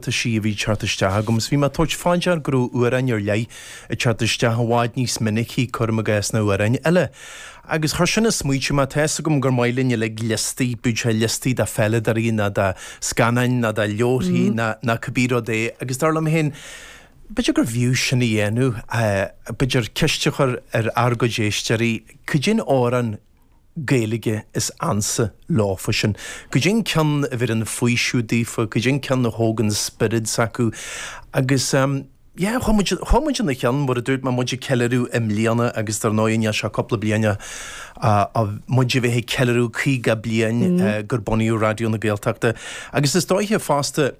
Tá sí a bhí ag teacht isteach agam is bhí mé ag tabhairt fá dear go raibh amhráin ar leith ag teacht isteach i bhfad níos minicí cuir i gcás ná amhráin eile. Agus chuir sin ag smaoitiú mé, tá fhios agam gur maith linn uilig liostaí, bíodh sé liostaí de pheileadóirí ná de scannáin ná de leabharthaí ná ná cibé rud é agus dar liom féin b'fhéidir gur bhfiú sin a dhéanamh, b'fhéidir ceist a chur ar ár gcuid éisteoirí, cad é an amhrán Gaeilge is ansa leofa sin. Cad é an ceann a bheireann faoiseamh daofa, cad é an ceann a thógann spiorad s'acu. Agus, yeah, chuir muid, chuir muid ina cheann, mar a dúirt mé, muid ag ceiliúradh i mbliana agus dar ndóigh i ndiaidh seo cúpla bliain a, a, a, muid a bheith ag ceiliúradh caoga bliain gur bunaíodh Raidió na Gaeltachta. Agus is dóiche fosta.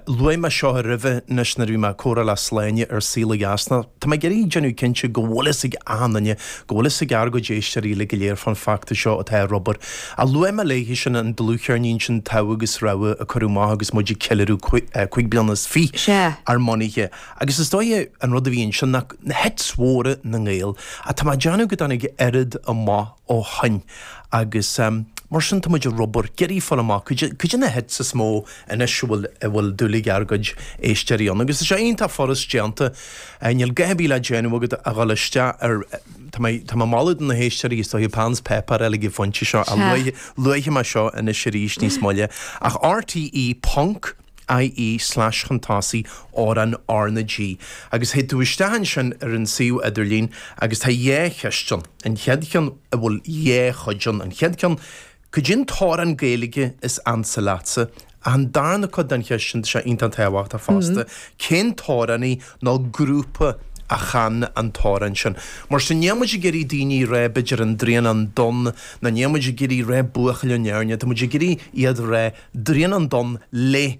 Luaigh mé seo aroimhe anois nuair a bhí mé ag comhrá le Sláine ar Saol ó Dheas. Tá mé ag iarraidh déanamh cinnte go bhfuil fhios ag achan duine, go bhfuil fhios ag ár gcuid éisteoirí uilig go léir fán feachtas seo atá ar obair. Ach luaigh mé léithe sin an dlúthcheirnín sin Togha agus Rogha a cuireadh amach agus muid ag ceiliúradh cúig bliana is fiche ár mbunaithe. Agus is dóiche an rud a bhí ansin ná hits mhóra na nGael. Ach tá mé ag déanamh go dtáinig oiread amach. ó shoin agus mar sin tá muid ar obair, ag iarraidh fáil amach cad é na hits is mó anois a bhfuil dúil ag ár gcuid éisteoirí ann agus é seo iontach furast déanta, níl a dhath ar bith le déanamh agat ach a dhul isteach ar, tá mé ag moladh do na héisteoirí is dóiche peann is páipéar a fháil ag an phointe seo ach luafaidh mé seo anois arís níos moille ach rte ponc. IE slash-chuntasaí RN RnaG agus théid tú isteach ansin ar an suíomh idirlín agus tá dhá cheist ann, an chéad cheann a bhfuil dhá chuid ann, an chéad ceann, cad é an t-amhrán Gaeilge is ansa leatsa? ach an darna cuid den cheist ann, tá sé iontach tábhachtach fosta, cén t-amhránaí nó grúpa a chan an t-amhrán sin? Mar sin, níl muid ag iarraidh daoine a rá b'fhéidir An Droighneán Donn ná níl muid ag iarraidh rá Buachaill ón Éirne, tá muid ag iarraidh iad a rá. Droighneán Donn le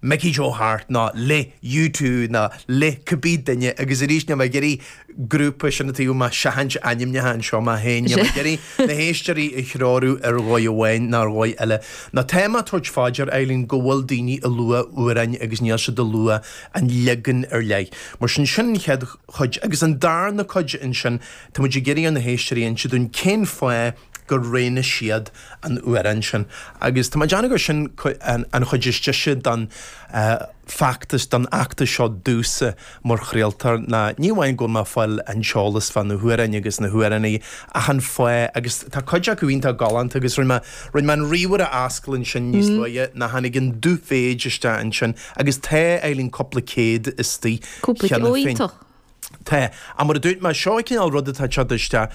Mickey Joe Harte nó le U2 nó le cibé duine agus arís níl mé ag iarraidh grúpa sin é tá mé ag seachaint ainmneacha anseo mé féin níl mé ag iarraidh na héisteoirí a threorú ar dhóigh amháin nó ar dhóigh eile. Nó tá mé ag tabhairt fá dear a Eibhlín go bhfuil daoine ag lua amhráin agus níl siad ag lua an leagan ar leith. Mar sin sin an chéad chuid. Agus an darna cuid ansin tá muid ag iarraidh ar na héisteoirí inse dúinn cén fáth gur roghnaigh siad an t-amhrán sin agus tá mé ag déanamh gur sin an chuid is dise don feachtas, don fheachtas seo domhsa mar chraoltar ná ní amháin go bhfuil mé ag fáil an t-eolas fá na hamhráin agus na hamhránaithe ach an fáth agus tá cuid acu iontach galánta agus rinne mé, rinne mé an ríomhaire a oscailt ansin níos luaithe ná tháinig an dubh-mhéid isteach ansin agus tá, a Eibhlín, cúpla céad istigh cheana féin. Cúpla, ó iontach. Tá, ach mar a dúirt mé, seo an cineál rud atá ag teacht isteach.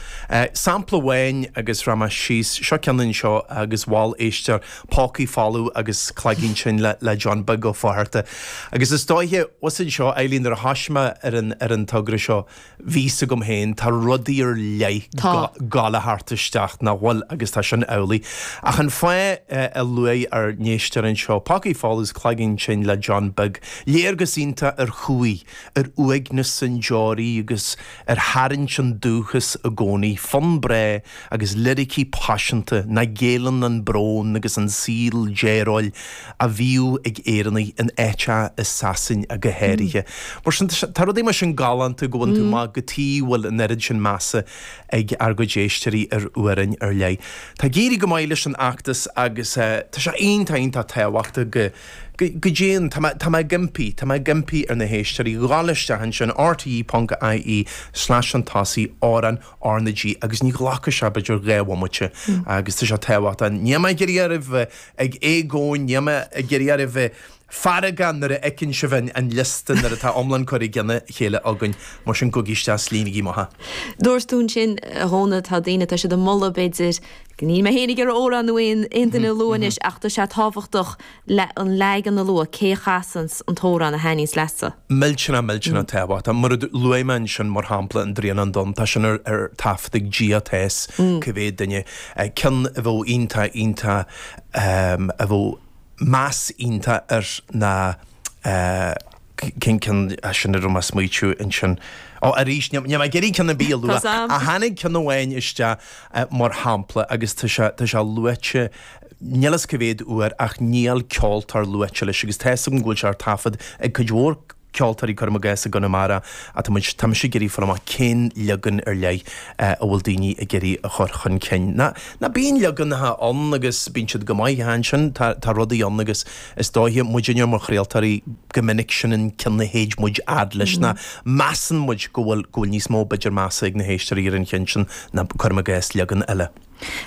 Sampla amháin, agus bhreac mé síos, seo ceann anseo agus mhol éisteoir, Pócaí Folamh agus Cloigín Tinn le John Beag Ó Flatharta. Agus is dóiche, fiú ansin, Eileen, nuair a thosaigh mé ar an, ar an togra seo, bhí fhios agam féin, tá rudaí ar leith Tá. ag gabháil a theacht isteach, nach bhfuil? Agus tá sin amhlaidh. Ach an fáth a luaigh ár n-éisteoir anseo, Pócaí Folamh 's Cloigín Tinn le John Beag, léargas iontach ar chúi, ar uaigneas an deoraí agus ar tharraingt an dúchas i gcónaí, fonn breá agus liricí paiseanta ina léiríonn an brón agus an saol dearóil a bhíodh ag Éireannaigh in áiteacha i Sasana go háirithe. Mar sin de, tá rudaí mar sin galánta go mbaineann tú maith go dtí bhfuil an oiread sin measa ag ár gcuid éisteoirí ar amhráin ar leith. Tá ag éirí go maith leis an fheachtas agus tá sé iontach iontach tábhachtach go Go deimhin, tá mé ag impí, tá mé ag impí ar na héisteoirí dhul isteach ansin, rte ponc ie, slash an tosaí, amhrán R na G, agus ní ghlacfaidh sé b'fhéidir dhá bhomaite agus tá sé tábhachtach. Níl mé ag iarraidh oraibh a bheith ag éagaoin, níl mé ag iarraidh oraibh a bheith ag gearán nuair a fheiceann sibh an liosta, nuair atá iomlán curtha i gcionn a chéile againn. Mar sin gabhaigí isteach is líonaigí amach é. Dúirt tú ansin, a Dhónaill, tá daoine, tá siad ag moladh b'fhéidir, Níl mé féin ag iarraidh amhrán ná aon duine a lua anois ach tá sé tábhachtach an leagan a lua, cé a chasann an t-amhrán a thaitníos leatsa? Millteanach, millteanach tábhachtach. Mar a luaigh mé ansin, mar shampla, An Draighneán Donn, tá sin ar taifead ag, níl fhios, cé mhéad duine? ceann a bheadh iontach, iontach, a bheadh meas iontach air ná. cén ceann é sin a raibh mé ag smaoitiú ansin? Ó, arís, níl mé ag iarraidh ceann ar bith a lua ach tháinig ceann amháin isteach mar shampla agus tá sé, tá sé luaite, níl fhios cé mhéad uair ach níl ceoltóir luaite leis agus tá 'fhios agam go bhfuil sé ar taifead ag cuid mhór ceoltóirí, cuirim i gcás, i gConamara, tá mise ag iarraidh fáil amach cén leagan ar leith a bhfuil daoine ag iarraidh a chur chun cinn. Nó bíonn leaganacha ann agus bíonn siad go maith ach ansin, tá rudaí ann agus. Is dóiche, muidinne mar chraoltóirí, go minic sin an ceann a théid muid fhad leis nó measann muid go bhfuil, go bhfuil níos mó b'fhéidir measa ag na héisteoirí ar an cheann sin ná, cuirim i gcás, leagan eile.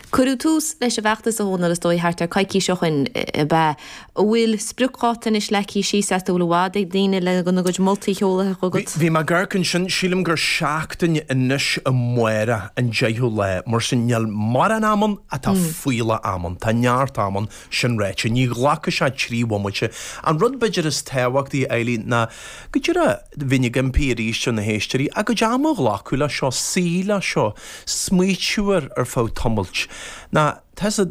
Cuireadh tús leis an bhfeachtas a Dhónaill, is dóigh thart ar coicís ó shoin ab ea, a bhfuil spriocdháta anois leagtha síos? An bhfuil i bhfad ag daoine le a gcuid moltaí a sheoladh chugat. Bhí mé ag amharc ansin, sílim gur seachtain ó amárach, an deichiú lá, mar sin níl mórán am ann ach tá fuílleach am ann, tá neart am ann Sin ráite, ní ghlacfaidh sé trí bhomaite. An rud b'fhéidir is tábhachtaí, a Eileen, ná go díreach, bhí mé ag impí arís ar na héisteoirí, a gcuid ama a ghlacadh leis seo, suí leis seo, smaoitiú air ar feadh tamailt. Mar tá sé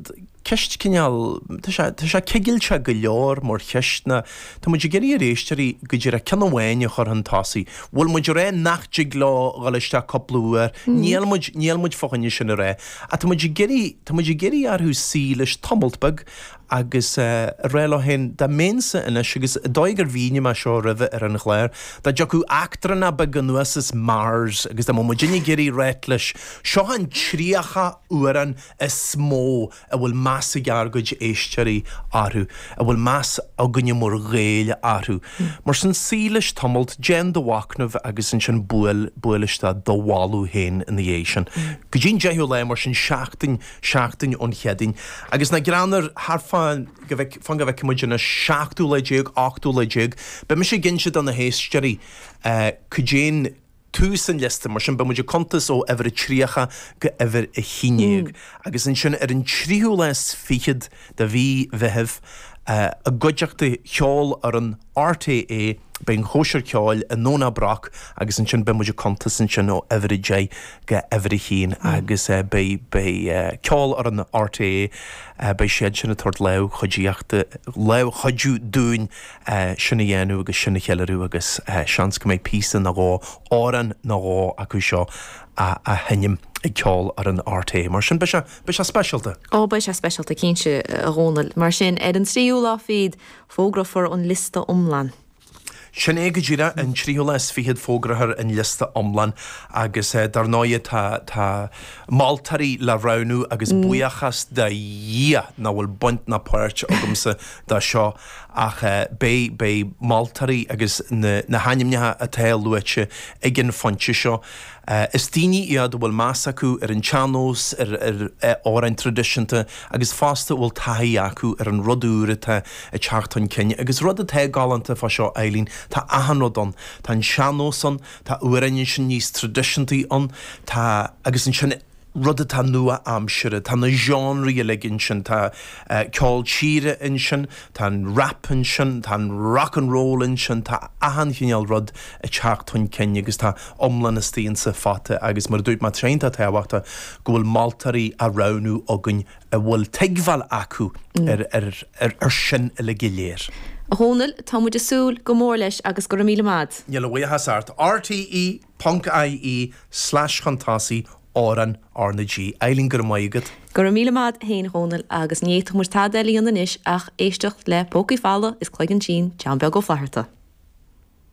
ceist cineál, tá sé, tá sé cigilte go leor mar cheist ná tá muid ag iarraidh ar éisteoirí go díreach ceann amháin a chur chun tosaigh, níl muid a rá nach dtig leo dhul isteach cúpla uair, níl muid, níl muid fá choinne sin a rá, ach tá muid ag iarraidh, Tá muid ag iarraidh orthu suí leis tamalt beag agus a rá leo féin, dá mbeinnse anois, agus is dóigh gur mhínigh mé seo roimhe ar an chlár, dá dtiocfadh eachtrannach beag anuas as Mars agus dá mbeadh muidinne ag iarraidh a ráit leis, seo an 30 amhrán is mó a bhfuil meas ag ár gcuid éisteoirí orthu, a bhfuil meas againne mar Ghaeil orthu. Mar sin, suí leis, tamalt, déan do mhacnamh agus ansin buail, buail isteach do mholadh féin ina dhiaidh sin. Go dtí an deichiú lá, mar sin, seachtain, seachtain ón Chéadaoin. Agus na, fan go bhfeic, fan go bhfeice muid anois seachtú lá déag, ochtú lá déag, beidh muid ag inse do na héisteoirí cad é an, tús an liosta. Mar sin, beimid ag cuntas ó uimhir a 30 go uimhir a haon déag, agus ansin ar an tríú lá is fichead de mhí Mheithimh, i gcuideachta Cheolfhoireann RTÉ, beidh an chóisir ceoil i nDomhnach Broc agus ansin beidh muid ag cuntas ansin ó uimhir a deich go uimhir a haon agus beidh Ceolfhoireann RTÉ, beidh siad sin ag tabhairt lámh chuidíochta, lámh chuidiú dúinn sin a dhéanamh agus sin a cheiliúradh agus seans go mbeidh píosa nó dhó, amhrán nó dhó acu seo á sheinm ag Ceolfhoireann RTÉ. Mar sin, beidh sé speisialta! Ó beidh sé speisialta cinnte a Dhónaill. Mar sin, ar an tríú lá fichead, fógrófar an liosta iomlán. Sin é go díreach, an tríú lá is fichead fógrófar an liosta iomlán agus dar ndóigh tá moltóirí le roghnú agus buíochas do Dhia nach bhfuil baint ná páirt agamsa dó seo! ach beidh, beidh moltóirí agus na hainmneacha atá luaite ag an phointe seo, is daoine iad a bhfuil meas acu ar an tsean-nós, ar amhráin traidisiúnta agus fosta a bhfuil taithí acu ar an rud úr atá ag teacht chun cinn. Agus rud atá galánta fá seo Eileen, tá achan rud ann, tá an sean-nós ann, tá amhráin ansin níos traidisiúnta ann, tá, agus ansin, rud atá nua-aimseartha. Tá na seánraí uilig ansin, tá ceol tíre ansin, tá an rap ansin, tá an rock and roll ansin, tá achan chineál rud ag teacht chun cinn agus tá iomlán na studiense faighte agus mar a dúirt mé, tréan tábhachtach go bhfuil moltóirí á roghnú againn a bhfuil tuigbheáil acu ar sin uilig go léir. A Dhomhnaill, tá muid ag súil go mór leis agus go raibh míle maith agat. Níl a bhuíochas ort. RTÉ. Ponc-IE slash cuntas oifigiúil RnaG ar líne go raibh maith agat. Go raibh míle maith agat féin a Dhónaill agus ní fhéadfadh muid tada eile a dhéanamh anois ach éisteacht le Pócaí Folamh is Cloigeann Tinn, John Beag Ó Flatharta.